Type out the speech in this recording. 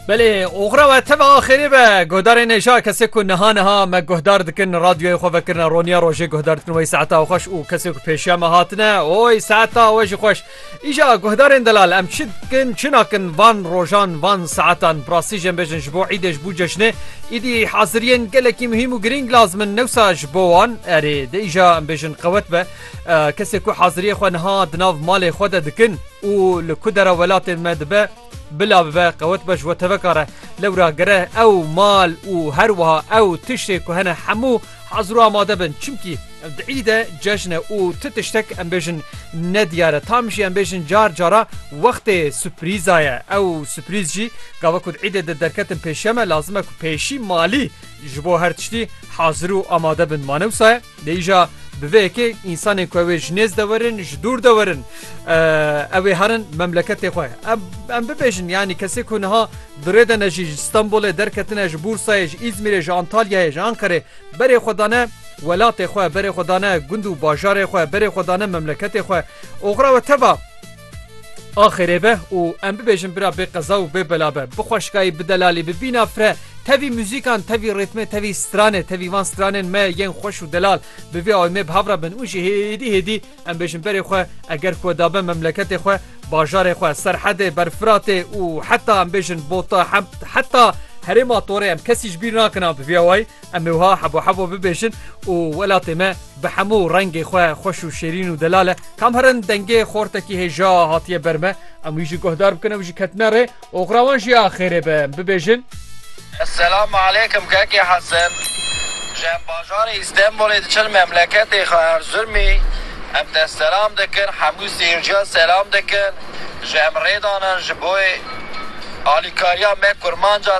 Belê oxra we teva axirî be guhdarê nêja kesê ku niha niha me guhdar dikin radyoyê xwe vekirine roniya rojê guhdar dikin wey saeta xweş û kesê ku pêşiya me hatine oy saeta we jî xweş îja guhdarên delal em çi dikin çi nakin van rojan van saetan birastî jê bêjin ji bo îdê ji bo cejnê îdî haziriyên gelekî muhîm û girîng lazim in newsa ji bo wan erê de îja em bêjin qewet be Kesê ku haziriyê xwe niha di nav malê xwe de dikin û li ku dera welatê me dibe bila bibe qewet be ji we teveka re. Lewra gere ew mal û her wiha ew tiştê ku hene hemû hazir û amade bin. Çimkî ev di îd e, cejn e û ti tiştek em bêjin ne diyar e. Tam jî em bêjin car cara wextê suprîza ye. Ew suprîz jî gava ku di îdê de derketin pêşiya me lazim e ku pêşî malî ji bo her tiştî hazir û amade bin. Mane wisa ye? Lê îja bi vê yekê însanên ku ew ê ji nêz de werin, ji dûr de werin ew ê herin memleketê xwe. Em bibêjin yanî kesê ku niha di rê de ne jî ji Stenbolê derketine, ji Bûrsayê, ji Îzmîrê, ji Antalyayê, ji Anqerê berê xwe dane welatê xwe, berê xwe dane gund û bajarê xwe, berê xwe dane memleketê xwe. Oxira we teva? Axirê be û em bibêjin bira bê qeza û bê bela be. Bi xweşikayî bi delalî bi bîna fre tevî muzîkan tevî rîtmê tevî stranê tevî van stranên me yên xweş û delal bi vê awê mê bi hev re bin û jî hêdî hêdî em bêjin berê xwe eger ku da be memleketê xwe bajarê xwe serhedê ber firatê û heta em bêjin bota heta herêma torê em kesî ji bîr nakin a bi vê awayî Em ê wiha hebo hebo bibêjin û welatê me bi hemû rengê xwe xweş û şêrîn û delal e. Kam herin dengê xortekî hêja hatiye ber me, em wî jî guhdar bikin, ew jî ketine rê. Oxira wan jî a xêrê be. Em bibêjin. Selam aleykum Keke Hesen. Ji hembajarê Îstenbolê diçin memleketê xwe Erzurmî. Em te selam dikin, hemû seyirciya selam dikin. Ji em rê danin ji bo alîkariya me kurmanca